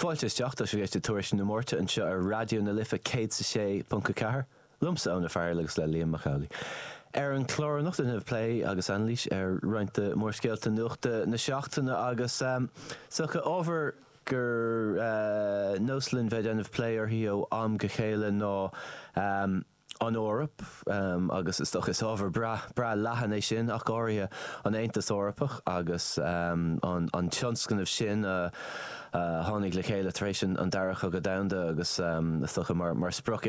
Fáilte isteach, tá sibh ag éisteacht le Tuairisc na Máirte anseo ar Raidió na Life 106.4, liomsa Eoin Ó Fearghail agus le Liam Mac Amhlaigh. Ar an chlár anocht déanfaimid plé agus anailís ar roinnt de mhórscéalta nuachta na seachtaine agus is dócha ábhar gur nós linn bheith ag déanamh plé uirthi ó am go chéile ná an Eoraip, agus is dócha is ábhar breá leathan é sin, ach go háirithe an Aontas Eorpach agus an tionscnamh sin a tháinig le chéile tar éis an Dara Cogadh Domhanda agus is dócha mar sprioc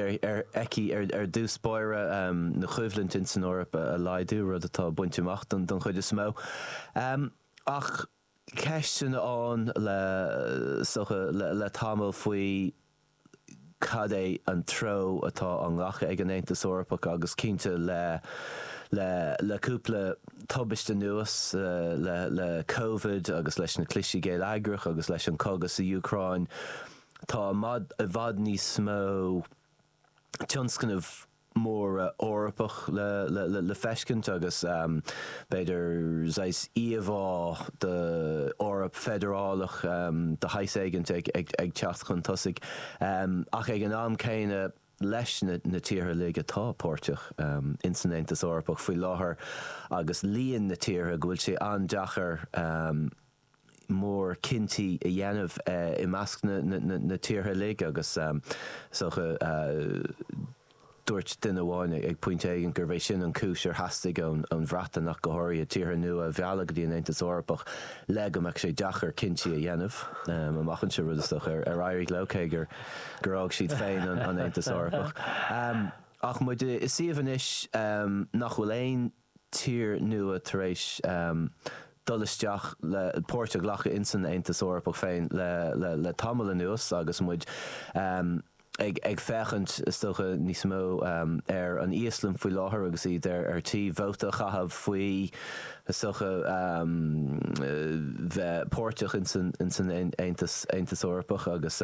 aici ar dtús báire na choimhlint in san Eoraip a laghdú, rud atá bainte amach den chuid is mó. Ach. ceisteanna ann is dócha le tamall faoi cad é an treo atá á nglacadh ag an Aontas Eorpach agus cinnte le cúpla tubaiste anuas, le le Covid agus leis na clistí geilleagracha agus leis an cogadh sa Úcráin, tá i bhfad níos mó. tionscnaimh mhóra Eorpacha le feiscint agus b'fhéidir saghas íomhá d'Eoraip feidearálach de shaghas éigint ag teacht chun tosaigh ach ag an am céanna leis na tíortha uilig atá páirteach ins san Aontas Eorpach faoi láthair agus líon na tíortha go bhfuil sé an-deacair mór cinntí a dhéanamh i measc na tíortha uilig agus is dócha dúirt duine amháin ag pointe éigin gurbh é sin an cúis ar theastaigh ón Bhreatain ach go háirithe, tíortha nua a mhealladh go dtí an Aontas Eorpach le go mbeadh sé deacair cinntí a dhéanamh amach anseo, rud is dócha ar éirigh leo, cé gur fhág siad féin an Aontas Eorpach. Ach muid i suíomh anois nach bhfuil aon. tír nua tar éis dul isteach le páirt a ghlacadh in san Aontas Eorpach féin le le tamall anuas agus muid ag féachaint is dócha níos mó ar an Íoslainn faoi láthair agus iad ar tí vóta a chaitheamh faoi is dócha bheith páirteach in san Aontas Eorpach agus.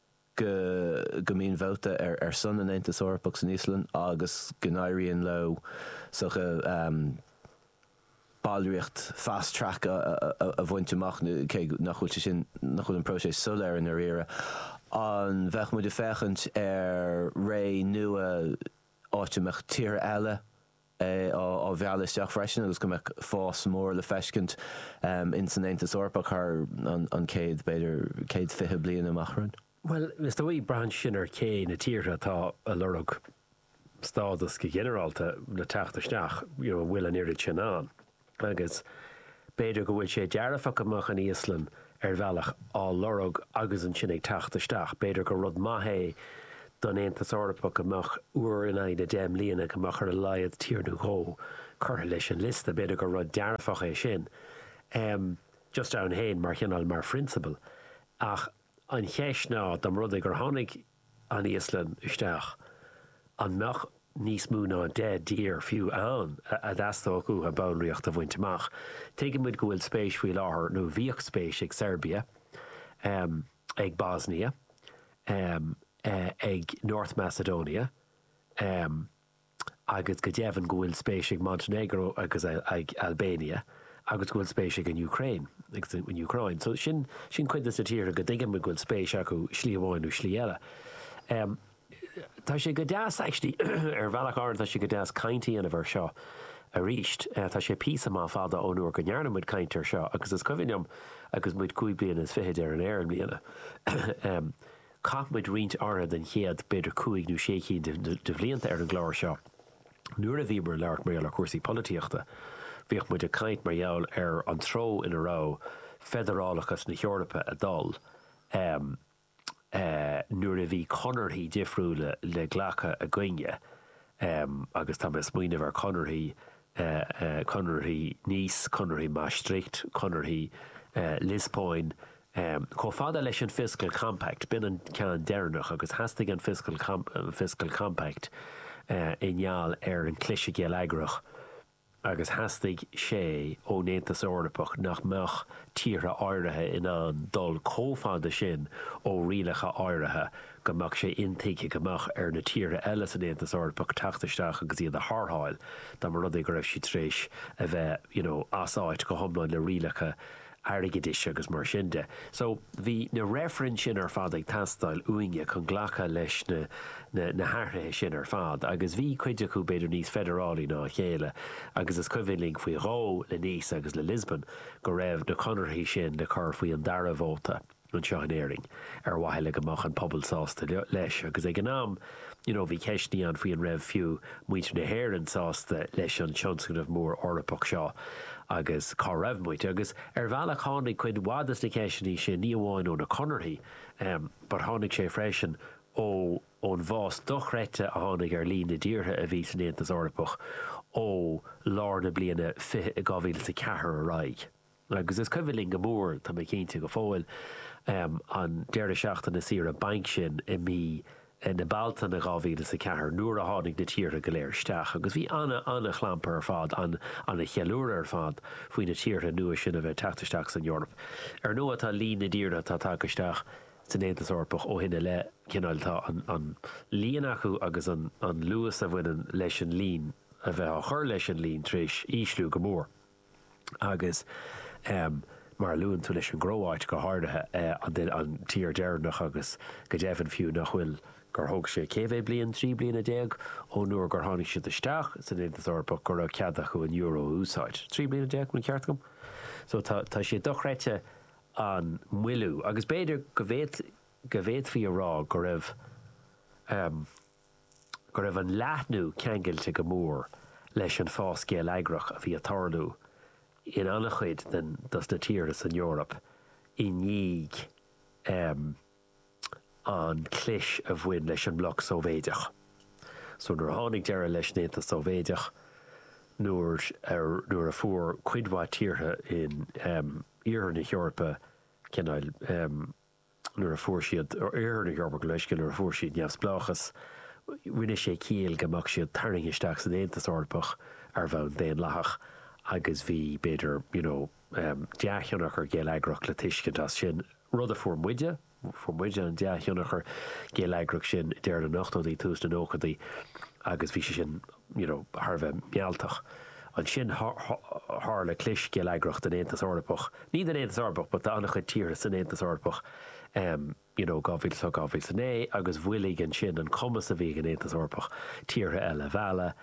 go mbíonn vóta ar son an Aontais Eorpaigh san Íoslainn agus go n-éiríonn leo is dócha ballraíocht fast track a bhaint amach, cé nach bhfuil sé sin, nach bhfuil an próiseas soiléir i ndáiríre. An mbeadh muid ag féachaint ar ré nua áit a mbeadh tíortha eile, á mealladh isteach freisin agus go mbeadh fás mór le feiscint ins an Aontas Eorpach thar an chéad, b'fhéidir, céad fiche bliain amach romhainn. Bhuel, is dóigh, braitheann sin ar cé na tíortha atá a' lorg stádas go ginearálta le teacht isteach, you know, an bhfuil an oiread sin ann. agus b'fhéidir go bhfuil sé dearfach go mbeadh an Íoslainn ar bhealach á lorg agus ansin ag teacht isteach. B'fhéidir gur rud maith é don Aontas Eorpach go mbeadh, uair in aghaidh na deich mbliana, go mbeadh ar a laghad tír nó dhó curtha leis an liosta. B'fhéidir gur rud dearfach é sin, just ann féin mar chineál, mar phrionsabal. Ach an cheist ná, dá mba rud é gur tháinig an Íoslainn isteach, an mbeadh níos mó ná deich dtír fiú ann a dteastódh uathu ballraíocht a bhaint amach? Tuigeann muid go bhfuil spéis faoi láthair, nó bhíodh spéis ag Seirbia, ag Bosnia, ag North Macedonia, agus go deimhin go bhfuil spéis ag Montenegro agus ag Albania, agus go bhfuil spéis ag an Úcráin agus ag an Úcráin. So sin, sin cuid de na tíortha go dtuigeann muid go bhfuil spéis acu slí amháin nó slí eile. Em, tá sé go deas, actually, ar bhealach áirithe tá sé go deas caint a dhéanamh air seo arís. Eh, tá sé píosa maith fada ón uair go ndearna muid caint air seo, agus is cuimhin liom, agus muid cúig bliana is fichid ar an aer i mbliana, em, chaith muid roinnt áirithe den chéad, b'fhéidir cúig nó sé cinn de bhlianta ar an gclár seo nuair a bhíomar ag labhairt mar gheall ar chúrsaí polaitíochta. Bhíodh muid ag caint mar gheall ar an treo ina raibh feidearálachas na hEorpa ag dul nuair a bhí conarthaí difriúla le glacadh againne agus tá mé ag smaoineamh ar chonarthaí, conarthaí Nice, conarthaí Maastricht, conarthaí Liospóin, chomh fada leis an Fiscal Compact, b'in an ceann deireanach, agus theastaigh an Fiscal Compact i ngeall ar an chliseadh geilleagrach agus theastaigh sé ón Aontas Eorpach nach mbeadh tíortha áirithe in ann dul chomh fada sin ó rialacha áirithe go mbeadh sé intuigthe go mbeadh ar na tíortha eile san Aontas Eorpach teacht isteach agus iad a tharrtháil dá mba rud é go raibh siad tar éis a bheith, you know, as áit go hiomlán le rialacha airgeadais agus mar sin de. So, bhí na reifrinn sin ar fad ag teastáil uainne chun glacadh leis na, na, na hathruithe sin ar fad agus bhí cuid acu b'fhéidir níos feidearálaí ná a chéile agus is cuimhin linn faoi dhó le Nice agus le Lisbon go raibh na conarthaí sin le cur faoi an dara vóta anseo in Éirinn, ar mhaithe le go mbeadh an pobal sásta leis. Agus ag an am, you know, bhí ceisteannaí ann faoi an raibh, fiú, muintir na hÉireann sásta leis an tionscnamh mór Eorpach seo agus cá raibh muid. Agus ar bhealach tháinig cuid mhaith de na ceisteannaí sin, ní amháin ó na conarthaí, but tháinig sé freisin ó, ón bhfás dochreidte a tháinig ar líon na dtíortha a bhí san Aontas Eorpach ó lár na bliana 2004 ar aghaidh. Agus is cuimhin linn go mór, tá mé cinnte, go fóill, an deireadh seachtaine saoire bainc sin i mí na Bealtaine 2000 is a cheathair, nuair a tháinig na tíortha go léir isteach. Agus bhí ana, ana chlampar ar fad, ana cheiliúradh ar fad, faoi na tíortha nua sin a bheith ag teacht isteach san Eoraip. Ar ndóigh, tá líon na dtíortha atá tagtha isteach san Aontas Eorpach ó shin i leith, cineál, tá an líon acu agus an luas a bhaineann leis an líon a bheith á chur leis an líon tar éis ísliú go mór. agus mar a luann tú leis an gCróáit go háirithe, an tír deireanach agus go deimhin fiú nach bhfuil, gur thóg sé cé mhéad bliain, trí bliana déag ón uair gur tháinig siad isteach san Aontas Eorpach go raibh cead acu an euro a úsáid. Trí bliana déag, an ceart agam? So tá sé dochreidte an moilliú agus b'fhéidir go bhféadfaí a rá go raibh. go raibh an leathnú ceangailte go mór leis an bhfás geilleagrach a bhí ag tarlú in an-chuid dos na tíortha san Eoraip i ndiaidh an clis a bhain leis an mbloc Sóivéideach. So nuair a tháinig deireadh leis an Aontas Sóivéideach, nuair a, nuair a fuair cuid mhaith tíortha in Iarthar na hEorpa cineál, nuair a fuair siad, Oirthear na hEorpa, gabh mo leithscéal, nuair a fuair siad neamhspleáchas, rinne sé ciall go mbeadh siad tarraingthe isteach san Aontas Eorpach ar bhonn daonlathach agus bhí, b'fhéidir, you know, dea-thionchar geilleagrach le tuiscint as sin, rud a fuair muide, fuair muide an dea-thionchar geilleagrach sin i deireadh na n-ochtóidí, tús na nóchaidí agus bhí sé sin. you know thar a bheith mealltach. Ansin tharla clis geilleagrach den Aontas Eorpach, ní den Aontas Eorpach but de an-chuid tíortha san Aontas Eorpach em you know 2008, 2009 agus mhoilligh ansin an cumas a bhí ag an Aontas Eorpach tíortha eile a mhealladh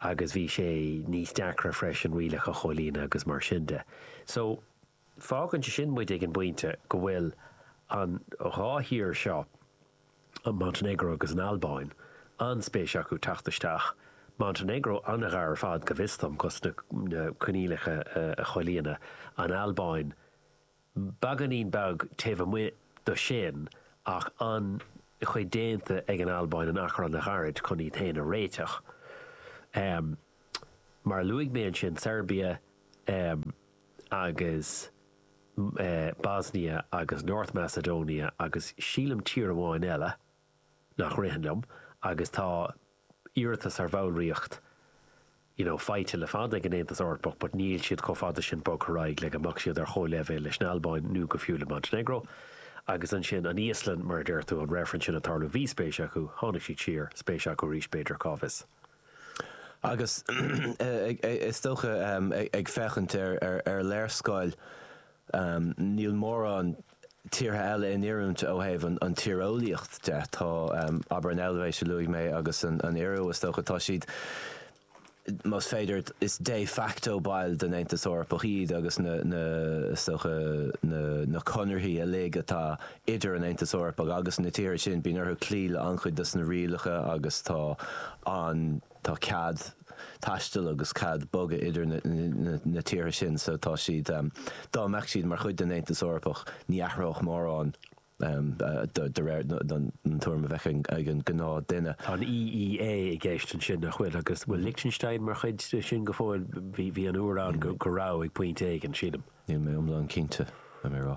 agus bhí sé níos deacra freisin rialacha a chomhlíonadh agus mar sin de. So. Fágann sé sin muid ag an bpointe go bhfuil an dhá thír seo, Montainéagró agus an Albáin, an-spéis acu teacht isteach, Montainéagró an-ghar ar fad, go bhfios dom, dos na coinníollacha a chomhlíonadh, an Albáin beagáinín beag taobh amuigh do sin ach an-chuid déanta ag an Albáin in achar an-ghairid chun iad féin a réiteach. Mar a luaigh mé ansin, Seirbia. agus Bosnia agus North Macedonia agus sílim tír amháin eile nach ritheann liom agus tá iarratas ar bhallraíocht you know faighte le fada ag an Aontas Eorpach but níl siad chomh fada sin bogtha ar aghaidh le go mbeadh siad ar chomhleibhéal leis an Albáin nó fiú le Montenegro agus ansin an Íoslainn mar a deir tú an reifreann sin ag tarlú bhí spéis acu tháinig siad siar spéis acu arís b'fhéidir cá bhfios. Agus is dócha, ag féachaint ar léarscáil, níl mórán tíortha eile in oiriúint ó thaobh an tíreolaíocht de. Tá, abair, an Eilvéis a luaigh mé agus an Iorua, is dócha, tá siad, más féidir a rá, is de facto baill den Aontas Eorpach iad agus na, is dócha, na conarthaí uilig atá idir an Aontas Eorpach agus na tíortha sin, bíonn orthu cloí le an-chuid dos na rialacha agus tá an, tá cead taistil agus cead bogadh idir na tíortha sin so tá siad, dá mbeadh siad mar chuid den Aontas Eorpach, ní athródh mórán de réir an tuairim a bheadh ag an gnáth duine. Tá an EEA i gceist ansin nach bhfuil agus bhfuil Lichtinstéin mar chuid de sin go fóill, bhí an uair ann go raibh ag pointe éigin sílim. Níl mé iomlán cinnte, caithfidh mé a rá.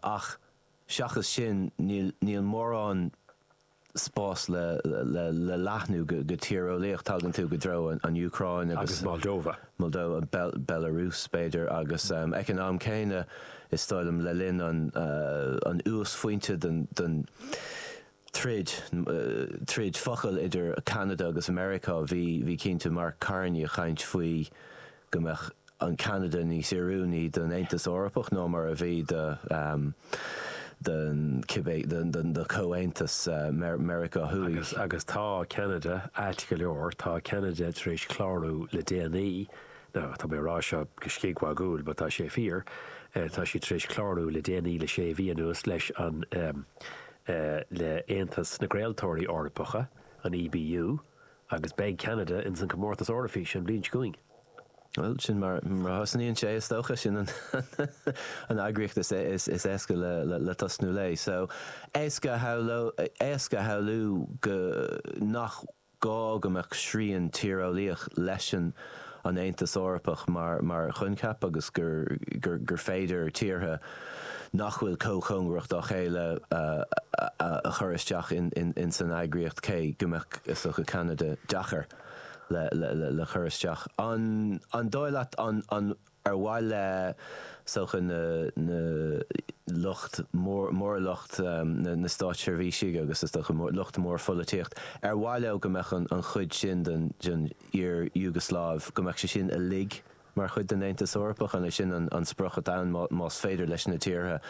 Ach seachas sin, níl mórán spás le leathnú go tíreolaíoch. Tagann tú i dtreo an Úcráin agus Moldova, Belarus b'fhéidir, agus ag an am céanna, is dóigh liom, le linn an uasphointe den. troid, troid focal idir Ceanada agus Meiriceá, bhí, bhí cinnte Mark Carney ag caint faoi go mbeadh an Ceanada níos oiriúnaí don Aontas Eorpach ná mar a bhí do, don cibé, don, don, do Chomhaontas Meiriceá Thuaidh. Agus, agus tá Ceanada ait go leor, tá Ceanada tar éis clárú le déanaí, now tá mé ag rá seo go scigmhagúil but tá sé fíor, tá siad tar éis clárú le déanaí le sé mhí anuas leis an, le Aontas na gCraoltóirí Eorpacha, an EBU, agus beidh Ceanada ins an Comórtas Eoraifíse an bhliain seo chugainn. Bhuel, sin mar a thosnaíonn sé, is dócha. Sin an eagraíocht is éasca le tosnú léi. So, éasca a shamhlú go nach. gá go mbeadh srian tíreolaíoch leis an an Aontas Eorpach mar choincheap agus gur féidir tíortha nach bhfuil chomh cóngarach dá chéile a chur isteach ins an eagraíocht cé go mbeadh, is dócha, Ceanada deacair le cur isteach. An dóigh leat an. Ar mhaith le, is dócha, na, na lucht mór, lucht na státseirbhísigh agus is dócha lucht mór pholaitíocht, ar mhaith leo go mbeadh an chuid sin den iar-Iúgasláiv, go mbeadh sé sin uilig mar chuid den Aontas Eorpach? An é sin an sprioc atá ann, más féidir leis na tíortha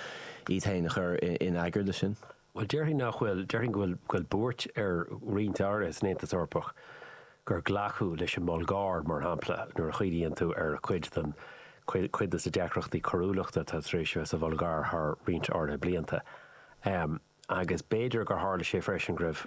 iad féin a chur in eagar leis sin? Bhuel, déarfainn nach bhfuil. Déarfainn go bhfuil buairt ar roinnt áirithe san Aontas Eorpach gur glacadh leis an mBulgáir, mar shampla, nuair a chuimhníonn tú ar chuid den, cuid de na deacrachtaí coiriúlachta atá tar éis a bheith sa Bhulgáir thar roinnt áirithe blianta. Agus b'fhéidir gur tharla sé freisin go raibh,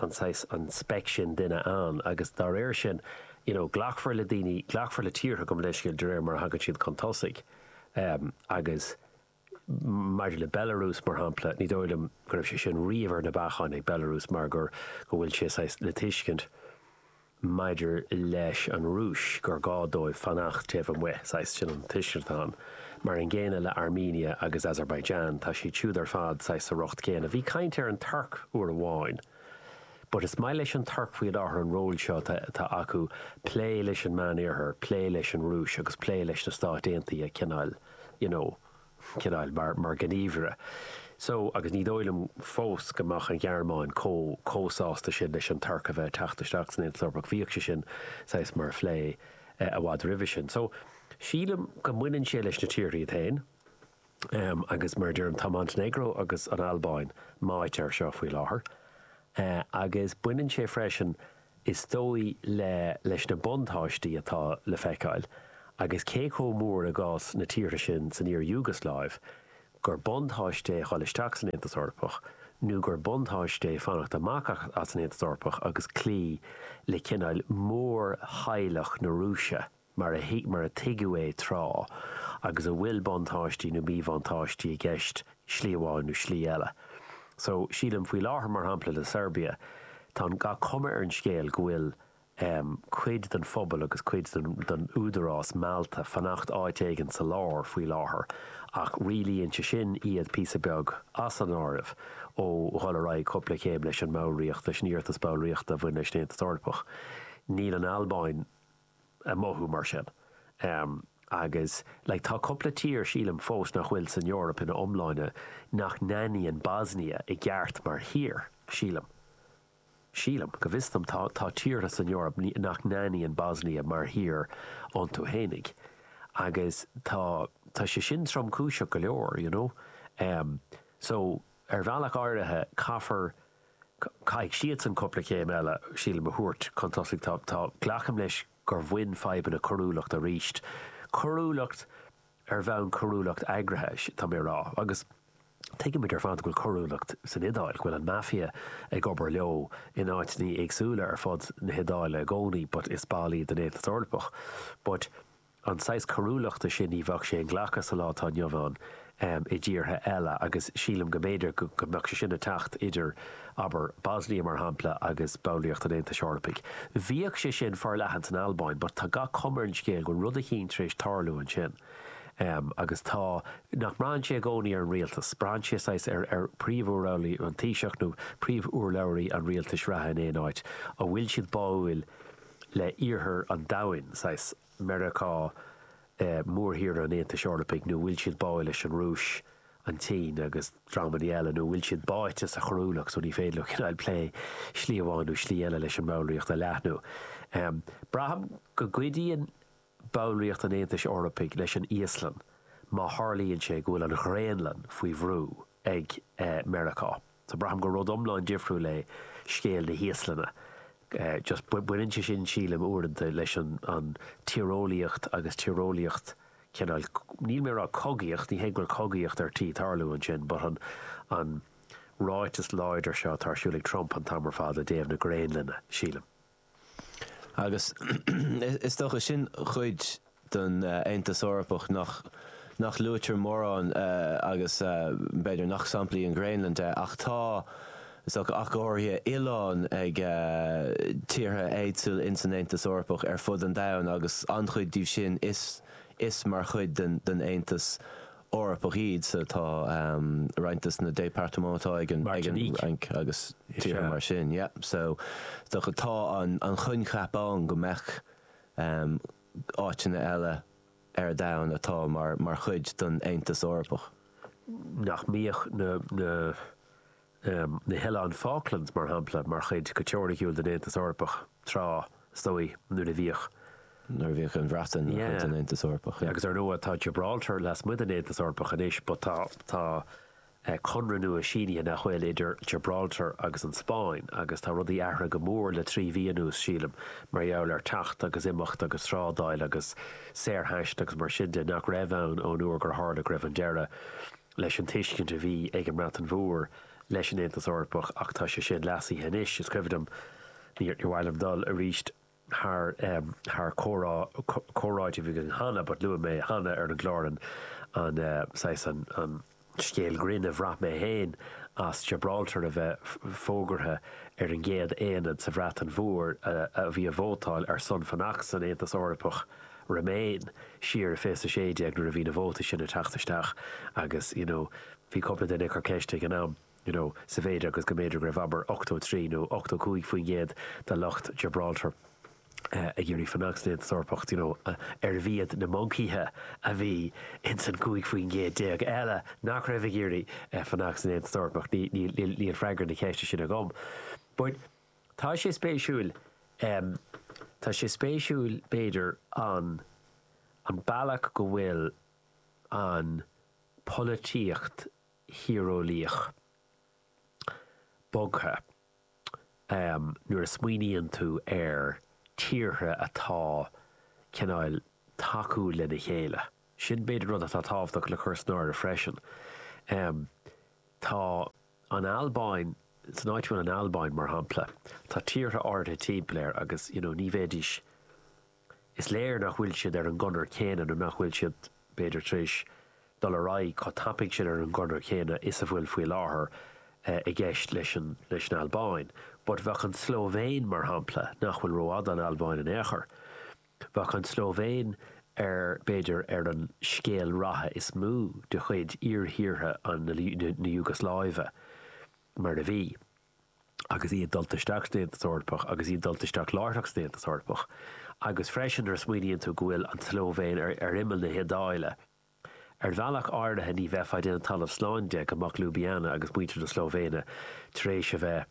an saghas, an speic sin duine ann agus dá réir sin you know glacfar le daoine, glacfar le tíortha gabh mo leithscéal, de réir mar a thagann siad chun tosaigh ehm agus maidir le Belarus mar shampla ní dóigh liom go raibh sé sin riamh ar na bacáin ag Belarus mar gur go bhfuil sé saghas le tuiscint maidir leis an Rúis, gur gá dóibh fanacht taobh amuigh, saghas, sin an tuiscint atá ann. Mar an gcéanna le Armenia agus Azerbaijan, tá siad siúd ar fad saghas sa riocht céanna. Bhí caint ar an Tuirc uair amháin. But is maith leis an Tuirc faoi láthair an ról seo atá acu plé leis an Meán-Oirthear, plé leis an Rúis agus plé leis na Stáit Aontaithe cineáil, you know. chineál mar ghníomhaire. So, agus ní dóigh liom fós go mbeadh an Ghearmáin chomh, chomh sásta sin leis an Tuirc a bheith ag teacht isteach san Aontas Eorpach, bhíodh sé sin saghas mar phlé i bhfad roimhe sin. So, sílim go mbaineann sé leis na tíortha iad féin ehm, agus mar a deirim, tá Montenegro agus an Albáin meáite air seo faoi láthair eh, agus baineann sé freisin, Is dóigh, le, leis na buntáistí atá le feiceáil, agus cé chomh mór i gcás na tíortha sin san iar-Iúgasláiv, gur buntáiste é dhul isteach san Aontas Eorpach nó gur buntáiste é fanacht amach as an Aontas Eorpach agus cloí le cineál mórtheaghlach na Rúise. mar a thuig, mar a tuigeadh é tráth, agus a bhfuil buntáistí nó míbhuntáistí i gceist slí amháin nó slí eile. So, sílim, faoi láthair, mar shampla, le Seirbia, tá an, gach cuma ar an scéal go bhfuil ehm, cuid den phobal agus cuid den, den údarás meallta ag fanacht áit éigin sa lár faoi láthair ach rialaíonn sé sin iad píosa beag as an áireamh ó dhul ar aghaidh cúpla céim leis an mballraíocht, leis an iarratas ballraíochta a bhain leis an Aontas Eorpach. Níl an Albáin. ag mothú mar sin. Agus like tá cúpla tír sílim fós nach bhfuil san Eoraip ina iomláine nach n-aithníonn Bosnia i gceart mar thír, sílim. Sílim. Go bhfios dhom tá tá tíortha san Eoraip nach n-aithníonn Bosnia mar thír iontu fhéinig. Agus tá tá sé sin tromchúiseach go leor, you know. So ar bhealach áirithe caithfear Caithfidh siadsan cúpla céim eile, sílim, a thabhairt chun tosaigh. Tá, tá, glacaim leis gur bhain fadhbanna coiriúlachta aríst, coiriúlacht ar bhonn coiriúlacht eagraithe, tá mé a rá, agus tuigimid ar fad go bhfuil coiriúlacht san Iodáil, go bhfuil an Mafia ag obair leo in áiteanna éagsúla ar fud na hIodáile i gcónaí but is ball iad den Aontas Eorpach but. an saghas coiriúlachta sin ní bheadh sé inghlactha sa lá atá inniu ann i dtíortha eile agus sílim go mb'fhéidir go mbeadh sé sin ag teacht idir, abair, Bosnia, mar shampla, agus ballraíocht an Aontais Eorpaigh. Bhíodh sé sin forleathan san Albáin but tá gach cuma ar an scéal go bhfuil rud eicínt tar éis tarlú ansin agus tá, nach mbraitheann sé i gcónaí ar an rialtas, braitheann sé saghas ar príomhurlabhraí, an Taoiseach nó príomhurlabhraí an rialtais reatha in aon áit, an bhfuil siad báúil, le iarthar an domhain, saghas Meiriceá, mórthír an Aontais Eorpaigh, nó bhfuil siad báuil leis an Rúis, an tSín agus dreamannaí eile, nó bhfuil siad báite sa choiriúlacht so ní féidir leo cineáil plé slí amháin nó slí eile leis an mballraíocht a leathnú. Braithim go gcuidíonn ballraíocht an Aontais Eorpaigh leis an Íoslainn má tharlaíonn sé go bhfuil an Ghraonlainn faoi bhrú ag Meiriceá. So braithim gur rud iomlán difriúil é scéal na hÍoslainne. Just baineann sé sin, sílim, uaireanta leis an tíreolaíocht agus tíreolaíocht cineál, níl mé ag rá cogaíocht, ní hé go bhfuil cogaíocht ar tí tarlú ansin but an ráiteas láidir seo atá ar siúl ag Trump an t-am ar fad i dtaobh na Graonlainne, sílim. Agus is dócha, sin cuid den Aontas Eorpach nach nach luaitear mórán agus b'fhéidir nach samhlaí an Ghraonlainn de, ach tá, is dócha, ach go háirithe, oileáin ag tíortha éagsúla ins an Aontas Eorpach ar fud an domhain agus an-chuid díobh sin is mar chuid den Aontas Eorpach iad so tá roinnt de na départements atá ag an Fhrainc agus tíortha mar sin. Yeah, so so tá an coincheap ann go mbeadh áiteanna eile ar domhan atá mar chuid den Aontas Eorpach. nach mbeadh na na na hOileáin Falklands, mar shampla, mar chuid, go teoiriciúil, den Aontas Eorpach, tráth, is dóigh, nuair a bhíodh. nuair a bhíodh an Bhreatain mar chuid den Aontas Eorpach. Agus, ar ndóigh, tá Gibraltar lasmuigh den Aontas Eorpach anois, but tá, tá Conradh nua sínithe, nach bhfuil, idir Gibraltar agus an Spáinn, agus tá rudaí athraithe go mór le trí mhí anuas, sílim, mar gheall ar teacht agus imeacht agus trádáil agus saorthaisteal agus mar sin de, nach raibh ann ón uair gur tharla go raibh an deireadh. leis an tuiscint a bhí ag an mBreatain Mhór leis an Aontas Eorpach ach tá sé sin leasaithe anois. Is cuimhin liom, níor mhaith liom dul arís thar thar comhrá, comhráite a bhí againn cheana but luaigh mé cheana ar an gclár an saghas, an scéal grinn a bhain mé féin as Gibraltar a bheith fógartha ar an gcéad aonad sa Bhreatain Mhór a bhí ag vótáil ar son fanacht san Aontas Eorpach. Remain, siar i fiche a 16 nuair a bhí na vótaí sin ag teacht isteach agus you know bhí cúpla duine ag cur ceiste ag an am you know sa mhéid agus go mb'fhéidir go raibh abair 83 nó 85 faoin gcéad de lucht Gibraltar ag iarraidh fanacht san Aontas Eorpach d'you know arbh iad na moncaíthe a bhí ins an 15 faoin gcéad eile nach raibh ag iarraidh fanacht san Aontas Eorpach? Níl freagra na ceiste sin agam but Tá sé spéisiúil, em, tá sé spéisiúil, b'fhéidir, an, an bealach go bhfuil an pholaitíocht thíreolaíoch bogtha, em, nuair a smaoiníonn tú ar tíortha atá, cineál, tacúil lena chéile. Sin, b'fhéidir, rud atá tábhachtach le cur san áireamh freisin. Em, tá. an Albáin, san áit a bhfuil an Albáin, mar shampla, tá tíortha áirithe timpeall air agus, you know, ní bheidís, is léir nach bhfuil siad ar an gconair chéanna nó nach bhfuil siad, b'fhéidir, tar éis dul ar aghaidh chomh tapaidh sin ar an gconair chéanna is a bhfuil faoi láthair i gceist leis an, leis an Albáin. But bheadh an tSlóivéin, mar shampla, nach bhfuil rófhada ón Albáin in aon chor, Bheadh an tSlóivéin ar, b'fhéidir, ar an scéal ratha is mó de chuid iar-thíortha na Iúgasláive, mar a bhí, agus iad dulta isteach san Aontas Eorpach, agus iad dulta isteach láithreach san Aontas Eorpach, agus freisin nuair a smaoiníonn tú go bhfuil an tSlóivéin ar imeall na hIodáile. Ar bhealach áirithe ní bheifeá ag déanamh talamh slán de go mbeadh Ljubljana agus muintir na Slóivéine tar éis a bheith,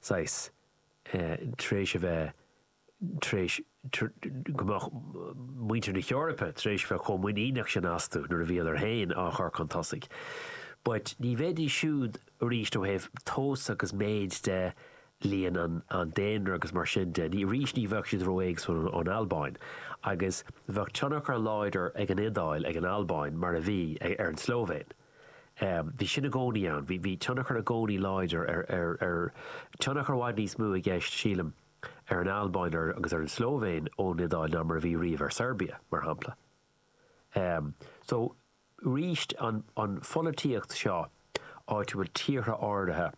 saghas, tar éis a bheith, tar éis go mbeadh muintir na hEorpa tar éis bheith chomh muiníneach sin astu nuair a bhíodar féin á chur chun tosaigh. But ní bheidís siúd, arís, ó thaobh tomhas agus méid de, líon an daonra agus mar sin de, ní, arís, ní bheadh siad ró-éagsúil ón Albáin. Agus bheadh tionchar an-láidir ag an Iodáil, ag an Albáin, mar a bhí, ar an tSlóivéin. Bhí sin i gcónaí ann, bhí tionchar i gcónaí láidir ar, ar, ar, tionchar i bhfad níos mó i gceist, sílim, ar an Albáin agus ar an tSlóivéin ón Iodáil ná mar a bhí riamh ar Seirbia, mar shampla. So, arís, an pholaitíocht seo áitiúil, tíortha áirithe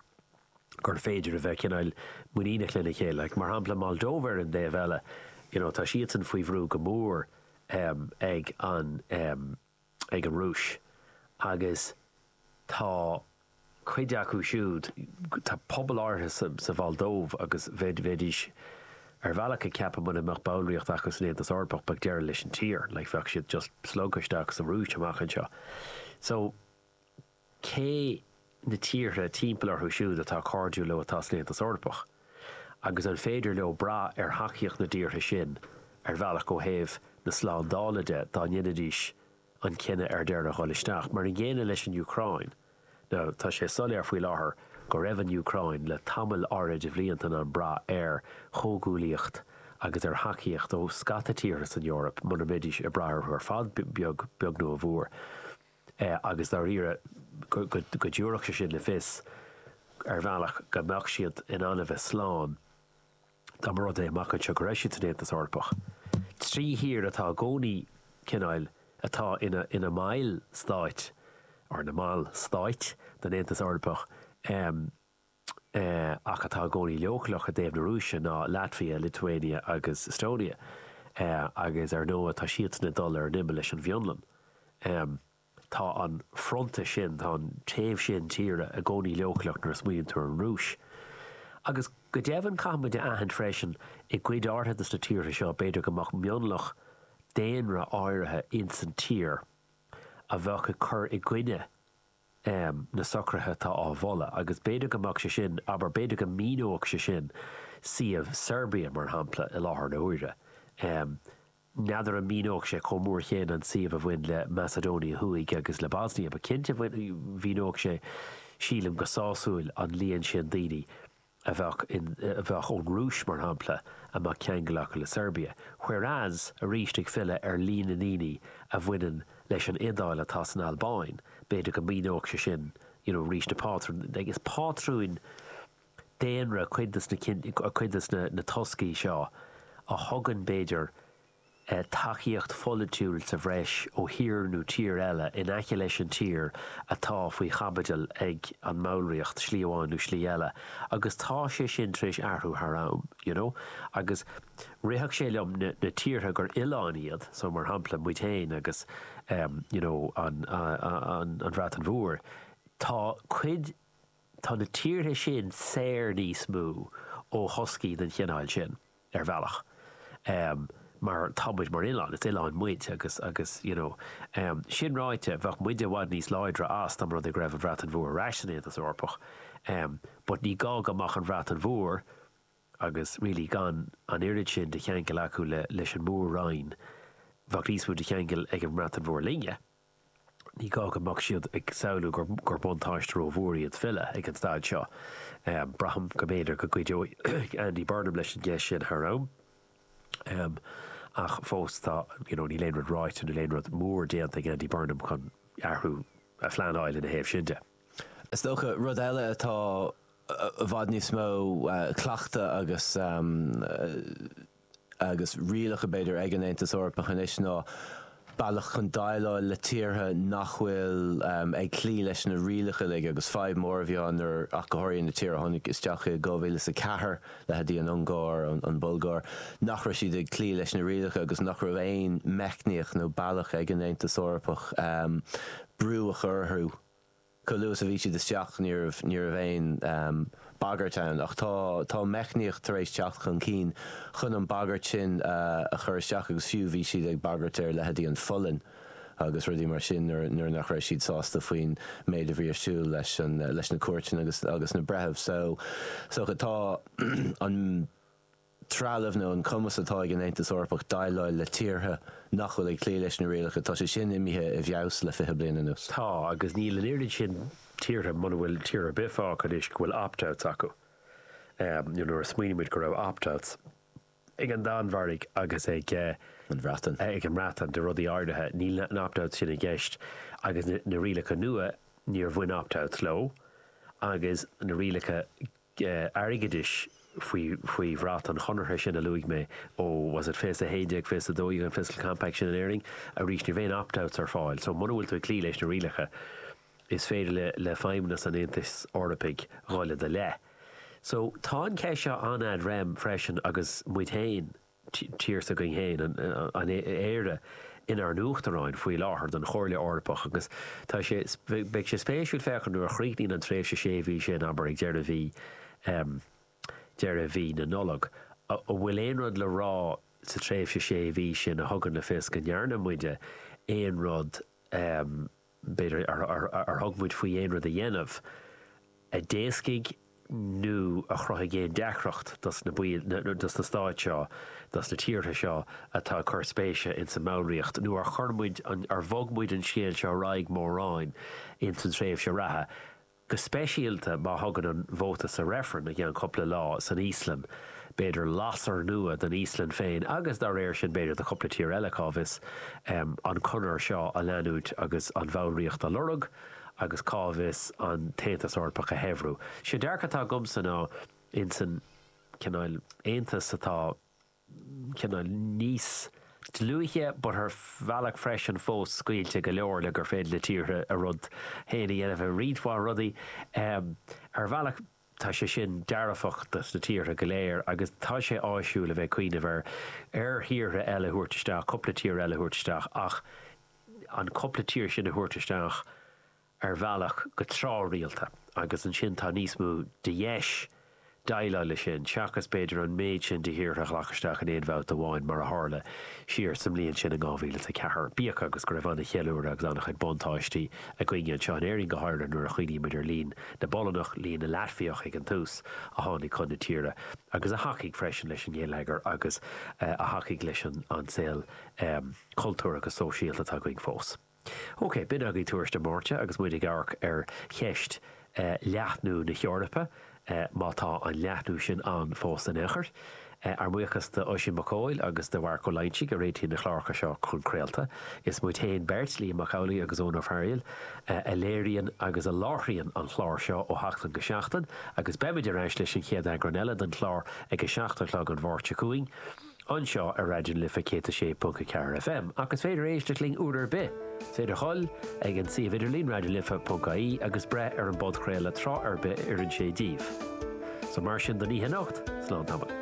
gur féidir a bheith cineál muiníneach lena chéile, mar shampla Moldóva ar an dtaobh eile, you know, tá siadsan faoi bhrú go mór ag an, ag an Rúis agus tá cuid acu siúd, tá pobal áirithe sa Mholdóiv agus bheidís ar bhealach ag ceapadh mura mbeadh ballraíocht acu san Aontas Eorpach bheadh deireadh leis an tír, like bheadh siad just slogtha isteach sa Rúis amach anseo. So. cé na tíortha timpeall orthu siúd atá cairdiúil leo atá san Aontas Eorpach, agus an féidir leo brath ar thacaíocht na dtíortha sin ar bhealach ó thaobh na slándála de dá ndéanfaidís an cinneadh ar deireadh dhul isteach? Mar an gcéanna leis an Úcráin. Now, tá sé soiléir faoi láthair go raibh an Úcráin le tamall áirid de bhlianta in ann brath ar chomhghuaillíocht agus ar thacaíocht ó scata tíortha san Eoraip mura mbeidís ag brath orthu ar fad beag beag nó a mhór. agus dáiríre go dtabharfadh sé sin le fios, ar bhealach, go mbeadh siad in ann a bheith slán dá mba rud é, amach anseo, go raibh siad san Aontas Eorpach. Trí thír atá i gcónaí cineáil atá ina mbaill stáit, or ina mbaill stáit, den Aontas Eorpach. ach atá i gcónaí leochaileach i dtaobh na Rúise, ná Laitvia, Lithuania agus Estonia, agus ar ndóigh tá siadsan ag dul ar an imeall leis an bhFionlainn. Tá an fronta sin, tá an taobh sin tíre, i gcónaí leochaileach nuair a smaoiníonn tú ar an Rúis. Agus go deimhin caithfidh muid a aithint freisin, i gcuid áirithe de na tíortha seo, b'fhéidir go mbeadh mionlach daonra áirithe insan tír a bheadh ag cur i gcoinne, um na socruithe atá á moladh, agus b'fhéidir go mbeadh sé sin, abair, b'fhéidir go míneodh sé sin suíomh Seirbia, mar shampla, i láthair na huaire. um N'fheadar an míneodh sé chomh mór chéanna an suíomh a bhain le Macedonia Thuaidh agus le Bosnia, but cinnte mhíneodh sé, sílim, go sásúil an líon sin daoine. a bheadh in, a bheadh ón gCróit, mar shampla, a mbeadh ceangal acu le Seirbia. Whereas, arís ag filleadh ar líon na ndaoine a bhaineann leis an Iodáil atá san Albáin, b'fhéidir go míneodh sé sin you know arís na pátrúin, like is pátrúin daonra cuid de na, cuid de na toscaí seo a thugann b'fhéidir, tacaíocht pholaitiúil sa bhreis ó thír nó tír eile in aice leis an tír atá faoi chaibidil ag an mballraíocht, slí amháin nó slí eile, agus tá sé sin tar éis athrú thar am, you know. Agus rithfeadh sé liom na tíortha gur oileáin iad, so mar shampla muid féin agus em you know an an an Bhreatain Mhór, tá cuid tá na tíortha sin saor níos mó ó thoscaí den chineál sin. ar bhealach, em, mar tá muid mar oileán, is oileáin muid agus, agus, you know. Em, sin ráite, bheadh muide i bhfad níos láidre as dá mba rud é go raibh an Bhreatain Mhór ar ais san Aontas Eorpach, em, but ní gá go mbeadh an Bhreatain Mhór agus really gan an oiread sin de cheangal acu le, leis an Mór-Roinn, bheadh níos mó de cheangal ag an mBreatain Mhór linne, Ní gá go mbeadh siad ag samhlú gur buntáiste ró-mhór iad filleadh ag an staid seo. Braithim go mb'fhéidir go gcuideoidh Andy Burnham leis an gceist sin thar am, ach fós tá, you know, níl aon rud ráite, níl aon rud mór déanta ag Andy Burnham chun athrú a phleanáil ina thaobh sin de. Is dócha, rud eile atá i bhfad níos mó cleachtadh agus. agus rialacha, b'fhéidir, ag an Aontas Eorpach anois ná bealach chun déileáil le tíortha nach bhfuil ag cloí leis na rialacha uilig agus fadhb mhór a bhí ann ná ach go háirithe na tíortha a tháinig isteach i 2004, leithéidí an Ungáir, an Bhulgáir, nach raibh siad ag cloí leis na rialacha agus nach raibh aon meicníocht nó bealach ag an Aontas Eorpach brú a chur orthu. Chomh luath is a bhí siad isteach ní raibh aon bhagairt ann ach tá tá meicníocht tar éis teacht chun cinn chun an bhagairt sin a chur isteach agus fiú bhí siad ag bagairt ar leithéidí an Pholainn agus rudaí mar sin nuair nach raibh siad sásta faoin méid a bhí ar siúl leis na cúirteanna agus na breithimh. So so tá an. trealamh nó an cumas atá ag an Aontas Eorpach déileáil le tíortha nach bhfuil ag cloí leis na rialacha, tá sé sin imithe i bhfeabhas le fiche bliain anuas. Tá, agus níl an oiread sin tíortha, muna bhfuil tír ar bith fágtha anois go bhfuil opt-outs acu. Nó nuair a smaoinímid go raibh opt-outs ag an Danmhairg agus ag an Bhreatain ag an mBreatain de rudaí áirithe, níl na opt-outs sin i gceist agus na rialacha nua, níor bhain opt-outs leo agus na rialacha airgeadais faoi faoi bhrat an chonartha sin a luaigh mé ó was it fiche 11, fiche 12 an Fiscal Compact sin in Éirinn? Arís, ní raibh aon opt outs ar fáil. So, muna bhfuil tú ag cloí leis na rialacha, is féidir le le feidhmeannas an Aontais Eorpaigh dhul i do leith. So, tá an cheist seo an-ad rem freisin agus muid féin a. tír s'againn féin, an Éire, inár n-uachtaráin faoi láthair don Chomhairle Eorpach agus tá sé, beidh sé spéisiúil féachaint nuair a chríochnaíonn an tréimhse sé mhí sin, abair, ag deireadh mhí, deireadh mhí na Nollag, an bhfuil aon rud le rá sa tréimhse sé mhí sin a thugann le fios go ndearna muide aon rud a b'fhéidir, ar thug muid faoi aon rud a dhéanamh a d'éascaigh nó a chruthaigh aon deacracht dos na baill, nó dos na stáit seo, dos na tíortha seo atá ag cur spéise ins an mballraíocht, nó ar chur muid, ar bhog muid an scéal seo ar aghaidh mórán ins an tréimhse reatha. go speisialta má thugann an vóta sa reifreann i gceann cupla lá san Íoslainn b'fhéidir lasair nua don Íoslainn féin agus dá réir sin b'fhéidir do chupla tír eile, cá bhfios, an chonair seo a leanúint agus an bhallraíocht a lorg agus cá bhfios an tAontas Eorpach a shaibhriú. Sé dearcadh atá agamsa ná insan cineál Aontas atá. cineál níos dlúithe but ar bhealach freisin fós scaoilte go leor le gur féidir le tíortha a rud féin a dhéanamh i roinnt mhaith rudaí. Ar bhealach tá sé sin dearfach do na tíortha go léir agus tá sé áisiúil a bheith ag cuimhneamh ar thíortha eile a thabhairt isteach, cúpla tír eile a thabhairt isteach ach an cúpla tír sin a thabhairt isteach, ar bhealach go tráthrialta agus ansin tá níos mó de dheis déileáil leis sin seachas b'fhéidir an méid sin de thíortha a ghlacadh isteach in aon bhabhta amháin mar a tharla siar sa mbliain sin in 2004. Bíodh agus go raibh an-cheiliúradh agus an-chuid buntáistí againne anseo in Éirinn go háirithe nuair a chuimhníonn muid ar líon na bPolannach, líon na Laitviach ag an tús, a tháinig chun na tíre agus a thacaigh freisin leis an ngeilleagar agus a thacaigh leis an saol cultúrtha agus sóisialta atá againn fós. Ok, b'in agaibh Tuairisc na Máirte agus muid ag amharc ar cheist leathnú na hEorpa, má tá an leathnú sin ann fós in aon chor. Ár mbuíochas d'Oisín Mac Cóil agus do Mharc Ó Loingsigh a réitíonn na cláracha seo chun craolta. Is muid féin beirt, Liam Mac Amhlaigh agus Eoin Ó Fearghaíl, a léiríonn agus a láithríonn an clár seo ó sheachtain go seachtain agus beimid ar ais leis an chéad eagrán eile den chlár ag a seacht a chlog an Mháirt seo chugainn. anseo ar Raidió na Life 106.4 FM ach is féidir éisteacht linn uair ar bith. Is féidir dhul ag an suíomh idirlín raidionalife.ie agus breith ar an bpodchraoladh tráth ar bith a oireann sé díbh. So mar sin don oíche anocht, slán tamall.